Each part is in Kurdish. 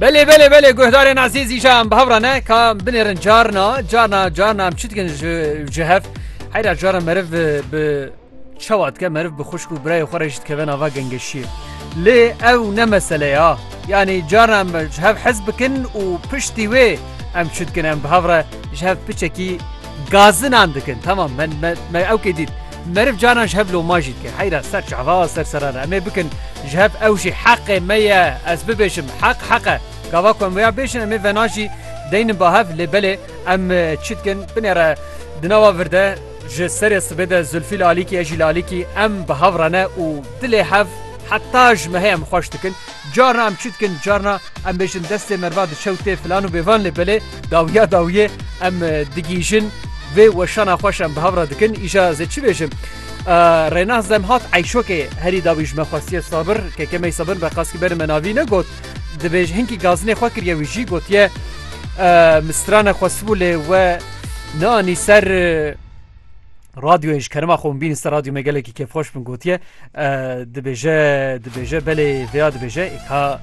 Belê belê belê guhdarên azîz îjan bi hevra ne ka binêrin carna carna carna em çi dikin ji hev heyra caran meriv bi çawa dike meriv bi xuşk û birayê xwe re jî dikeve nava gengeşiyê lê ew ne meseleya yanî caran em ji hev hez bikin û piştî wê em çi dikin em bi hevre ji hev piçekî gazinan dikin tamam me ewkê dît Meriv carnan ji hev loma jî dike. Heyra ser çava, ser serana em ê bikin ji hev ew jî heqê me ye ez bibêjim heq heq e. Gava ku em wêya bêjin em ê vena jî deynin ba hev lê belê em çi dikin binêre di nava vir de ji serê sibê de Zulfî li alîkî ez jî li alîkî em bi hev re ne û dilê hev heta ji mehê em xweş dikin. Carna em çi dikin carna em bêjin destê merva diçe û tê filan û bêvan lê belê dawiya dawiyê em digihîjin vê weşana xweş em bi hev re dikin îja zê çi bêjim Rênaz dem hat eyşokê herî dawî ji me xwestiye sabir kekemey sabir be qas ki berin me navî negot dibêj hinkî gazinê xwe kiriye wî jî gotiye mistrane xwestibû lê we neanî ser Radyoyê ji kerema xwe min bînî ser radyo me gelekî kêfxweş min gotiye dibêje dibêje belê vêya dibêje ka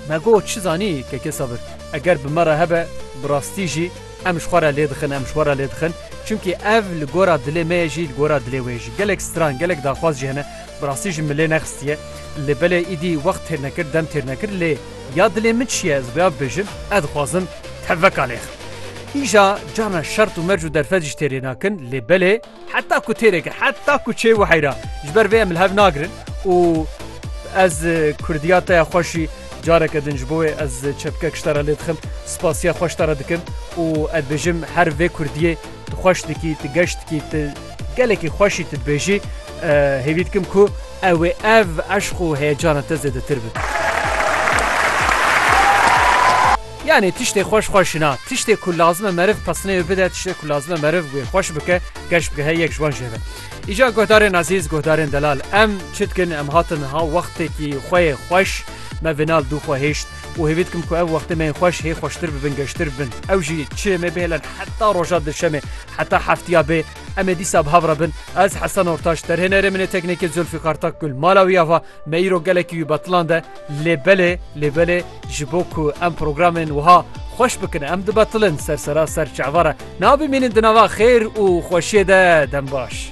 me got çi zanî kekê sabir eger bi me re hebe bi rastî jî em ji xwe re lê dixin em ji xwe re lê dixin çimkî ev li gora dilê me ye jî li gora dilê wê jî gelek stran gelek daxwaz jî hene bi rastî jî min lê nexistiye lê belê îdî wext têr nekir dem têr nekir lê Ya dilê min çi ye ez rêya bibêjim, ez dixwazim tevveka nêxim. Îja canan şert û merc û derfet jî têrê nakin lê belê heta ku têrê kir heta ku çê wiheyra ji ber vê em li hev nagirin û ez kurdiya te ya xweş jî careke din ji bo wê ez çepkek ji te re lê dixim spasiya xwe ji te re dikim û ez dibêjim her vê kurdiyê tu xweş dikî tu geş dikî tu Gelekî xweşî tu dibêjî hêvî dikim ku ew ê ev eşq û heyecana te zêdetir bi. Yanî tiştê xweş xwe şina, tiştê ku lazim e meriv pestinê wê bide, tiştê ku lazim e meriv wê xweş bike, geş bigehe yek ji wan jê ve. Îca guhdarên ezîz, guhdarên delal, em çi dikin? Em hatin ha wextekî xwe yê xweş me vê nav dû xwe hêşt û hêvî dikim ku ev wextê me yên xweş hê xweştir bibin, geştir bibin. Ew jî çi me bihêlin heta roja dirşemê. Heta heftiya bê em ê dîsa bi hev re bin. Ez Hesen Ortaş derhênerê min ê teknekê Zulfîqar Takgul mala wî ya va me îro gelekî wî betiland e lê belê lê belê ji bo ku em programên wiha xweş bikin em dibetilin sersera ser çava re nabimînin di nava xêr û xweşiyê de dem baş.